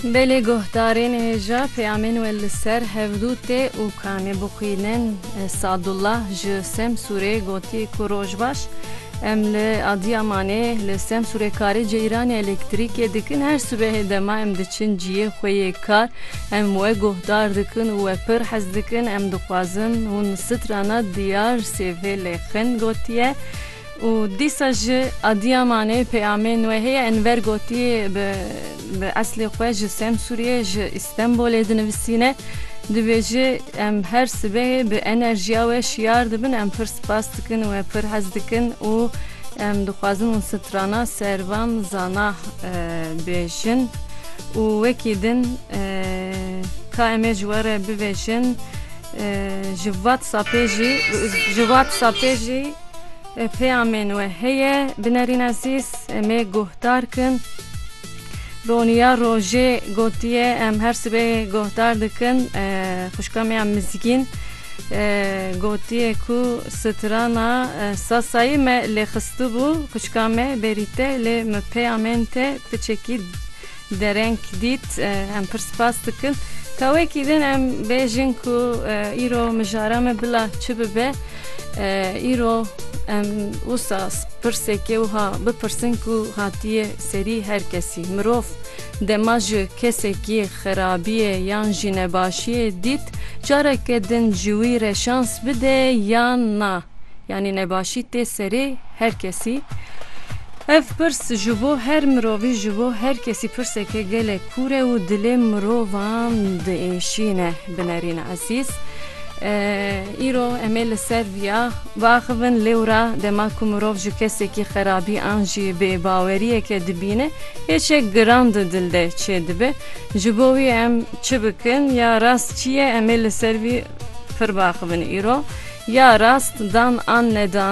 Belê guhdarên hêja peyamên we li ser hevdû tê û kanê bixwînin. Sadullah ji Semsûrê gotiye ku rojbaş em li Adiyamanê li Semsûrê karê ceyranê elektrîkê dikin. Her sibehê dema em diçin ciyê xwe yê kar em we guhdar dikin û we pir hez dikin. Em dixwazin hûn strana diyar sêvê lê xin gotiye. Û dîsa ji Adiyamanê peyamên wê heye Enver gotiye bi bi eslê xwe ji Semsûriyê ji Îstenbolê dinivisîne dibêje em her sibehê bi enerjiya we şiyar dibin em pir spas dikin we pir hez dikin û em dixwazin û strana servan zana bêjin û wekî din ka em ê ji we re bivêjin ji watsapê jî ji watsapê jî Peyamên we heye binerîn ezîz em ê guhdar kin. Roniya Rojê gotiye em her sibehê guhdar dikin xwişka me ya Mizgîn gotiye ku strana Sasayî me lê xistibû xwişka me berî te lê min peyamên te ti çekî Dereng dît em pir spas dikin. Ka wekî din em bêjin ku îro mijara me bila çi bibe îro em wisa pirsekê wiha bipirsin ku hatiye serî her kesî mirov dema ji kesekî xerabiyê yan jî nebaşiyê dît careke din ji wî re şans bide yan na. Yanî nebaşî tê serê her kesî. Ev pirs ji bo her mirovî, ji bo her kesî pirsek e gelek kûr e û dilê mirovan diêşîne. Bi Nerîn Ezîz. Îro em ê li ser viya biaxivin. Lêwra dema ku mirov ji kesekî xerabî an jî bêbaweriyeke dibîne, hêçek giran di dil de çêdibe. Ji bo wî em çi bikin ya rast çi ye em ê li ser vî pir baaxivin îro ya rast dan an nedan.